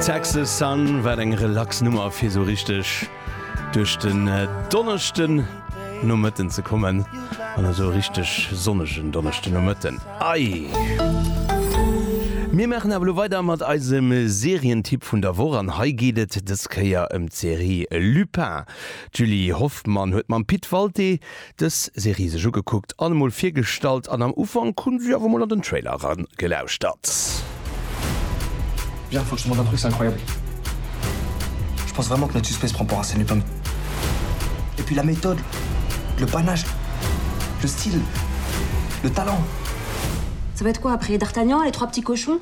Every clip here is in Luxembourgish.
Texas Sun, wat eng relax Nummer fir sou richteg duerch den Donneschden Nomëtten ze kommen, an esou e richteg sonnegen Donneschden Nomëtten. Aii! Mir maachen awer elo weider mat eisem Serientipp vun der Woch, an hei geet et dës Kéier ëm d'Serie Lupin. D'Julie Hoffmann huet mam Pit Walté dës Serie sech ugekuckt an emol virgestallt an am Ufank hu si awer mol an den Trailer eran gelauschtert. Bien franchement ta truc c'est incroyable je pense vraiment que notre suspect se prend pour Arsène Lupin et puis la méthode le panache le style le talent. Ça va être quoi après d'Artagnan et les trois petits cochons?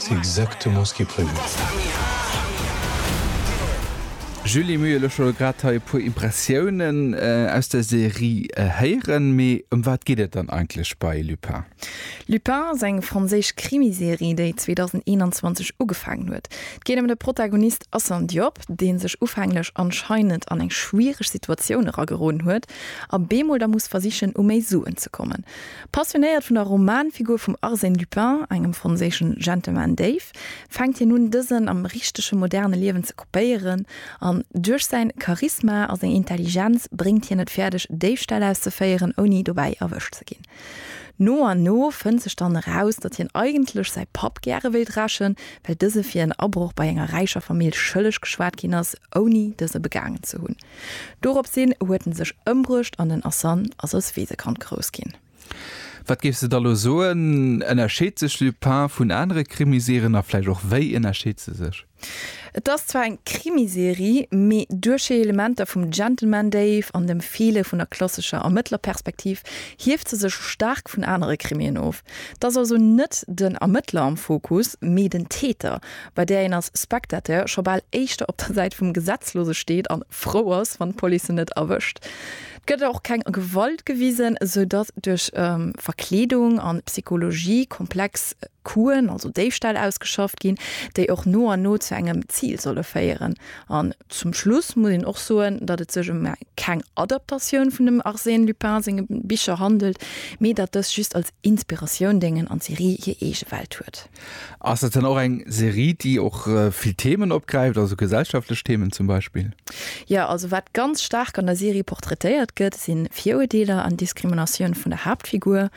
C'est exactement ce qui est prévu. Julie Muyr, elo scho grad hei e puer Impressiounen aus der Serie héieren, mee ëm wat geet et dann eigentlech bei Lupin? Lupin ass eng franséisch Krimiserie, déi 2021 ugefaangen huet. Et geet ëm de Protagonist Assane Diop, dee sech ufänglech anscheinend an eng schwiereg Situatioun erageroden huet a bemol da muss versichen, u méi Suen ze kommen. Passionéiert vun der Romanfigur vum Arsène Lupin, engem franséischen Gentleman Déif, fänkt hien un, dësen am richtege moderne Liewen ze kopéieren, an duerch säin Charisma a seng Intelligenz bréngt hien et fäerdeg, Déifställ auszeféieren, ouni dobäi erwëscht ze ginn. No an no fënnt sech dann eraus, datt hien eigentlech säi Papp gäre wéilt rächen, well dëse fir en Abroch bei enger räicher Famill schëlleg geschwat ginn ass, ouni dëse begaangen ze hunn. Dorops hin huet en sech ëmbruecht an den Asan ass als Weesekand grouss ginn. Wat géifs de da lo soen, ënnerscheet sech Lupin vun anere Krimiserien a vläicht och wéi ënnerscheet se sech? Et ass zwar eng Krimiserie, mee duerch hir Elementer vum Gentleman Dave an dem Feele vun der klassescher Ermëttlerperspektiv hieft se sech staark vun anere Krimien of. Et ass also net den Ermëttler am Fokus, mee den Täter, bei där een als Spectateur scho bal éischter op der Säit vum Gesetzlose steet an frou ass, wann d'Police en net erwëscht. Et gëtt och keng Gewalt gewisen, esou datt duerch Verkleedung an Psychologie komplex Coup'en, also Déifställ, ausgeschafft ginn, déi och no an no zu engem Zil solle féieren. An zum Schluss muss een och soen, datt et sech ëm keng Adaptatioun vun dem Arsène Lupin senge Bicher handelt, mee datt dës just als Inspiratioun déngen an d'Serie hir eege Welt huet. Ass et dann och eng Serie, déi och vill Themen opgräift, also gesellschaftlech Themen zum Beispill? Jo, also wat ganz staark an der Serie portraitéiert gëtt, si Viruerdeeler an Diskriminatioun vun der Haaptfigur.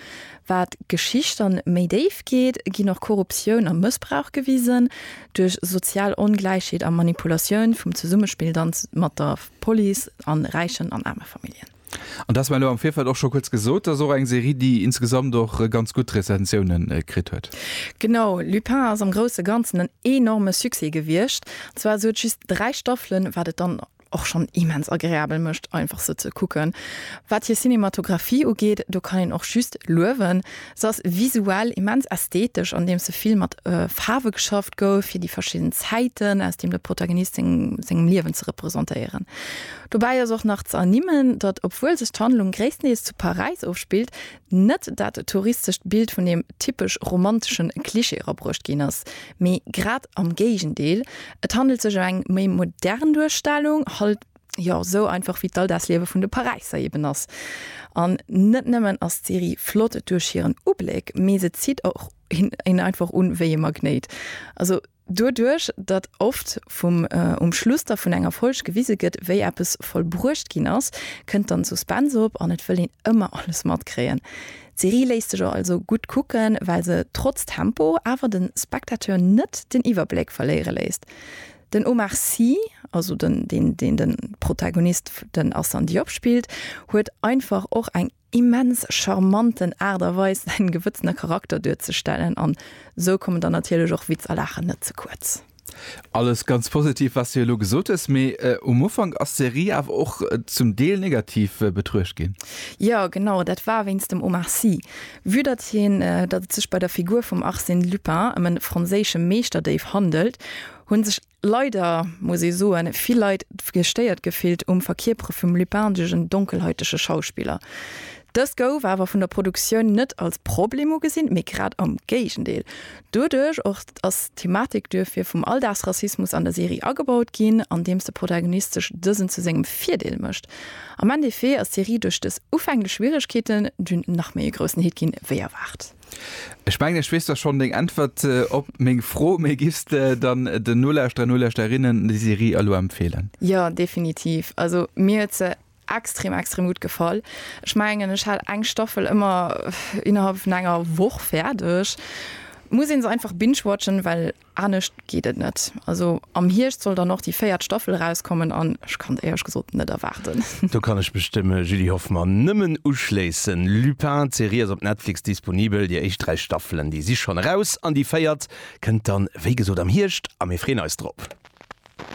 Wat d'Geschicht dann méi déif geet, ginn och Korruptioun a Mëssbrauch gewisen, duerch sozial Ongläichheet a Manipulatioun vum Zesummespill dann mat der Police a räichen an aarme Familljen. An du has mer elo am Virfeld och scho kuerz gesot, dat ass och eng Serie, déi insgesamt och ganz gutt Rezensioune kritt huet. Genau, Lupin ass am grousse Ganzen en enorme Succès gewiescht. An zwar, se huet just dräi Staffelen, wat et dann och schonn immens agreabel mécht, einfach se ze kucken. Wat hir Cinematographie ugeet, do kann een och just luewen, Se ass visuell immens ästhetesch, andeems se vill mat Faarwe geschafft gouf, fir déi verschidden Zäiten aus deem de Protagonist sengem Liewen ze representéieren. Dobäi ass och nach ze ernimmen, datt, obwuel sech d'Handlung gréisstendeels zu Paräis ofspillt, net dat touristescht Bild vun deem typesch romantesche Klischee erabruecht ginn ass, mee grad am Géigendeel, et handelt sech ëm eng méi modern Duerstellung, halt, Jo, sou einfach wéi d'Alldagsliewe vun de Paräisser eben ass. An net nëmmen ass d'Serie flott duerch hiren Ubléck, mee se zitt och een einfach un wéi e Magnéit. Also doduerch, datt oft vum um Schluss da vun enger Folg gewise gëtt, wéi eppes vollbruecht ginn ass, kënnt dann Suspense op an et wëll een ëmmer alles matkréien. D'Serie léisst sech also gutt kucken, well se trotz Tempo awer de Spectateur net den Iwwerbléck verléiere léisst. Den Omar Sy, also den deen deen den Protagonist den Assane Diop spillt, huet einfach och eng immens charmanten Art a Weis säin gewëtzene Charakter duerzestellen an sou kommen dann natierlech och Witz a Laachen net ze kuerz. Alles ganz positiv wats de elo gesot hues, mee um Ufank ass d'Serie awer och zum Deel negativ betruecht ginn. Jo genau, dat war wéinst dem Omar Sy. Vue datt hien datt et sech bei der Figur vum Arsène Lupin ëm e franséische Meeschterdéif handelt, hu sech leider, muss ee soen, vill Leit gestéiert gefillt um Verkierpere vum Lupin duerch en donkelhäutege Schauspiller. Dëst gouf awer vun der Produktioun net als Problem ugesinn, mee grad am Géigendeel. Doduerch och ass d'Thematik duerfir vum Alldagsrassismus an der Serie agebaut ginn, andeems de Protagonist sech dësen zu sengem Virdeel mécht. Am Endeffet ass d'Serie duerch dës ufänglech Schwieregkeeten dunn nach méi e groussen Hit ginn wéi erwaart. Ech mengen ech weess da schonn deng Äntwert op meng Fro, mee giffs de dann den Nolauschterer, Nolauschterinnen déi Serie elo empfeelen? Jo, definitiv. Also mir huet se Extrem extrem gutt gefall. Ech mengen ech hat eng Staffel ëmmer innerhalb vun enger Woch fäerdeg. Muss een se einfach binge-watchen, well anescht geet et net. Also am Hierscht soll dann och déi véiert Staffel erauskommen an ech kann et éierlech gesot net erwaarden. Do kann ech mech dem Julie Hoffmann nëmmen uschléissen. Lupin, d'Serie ass op Netflix disponibel. Déi éischt dräi Staffelen déi si schonn eraus an déi véiert kënnt dann wéi gesot am Hierscht a mir freeën eis drop.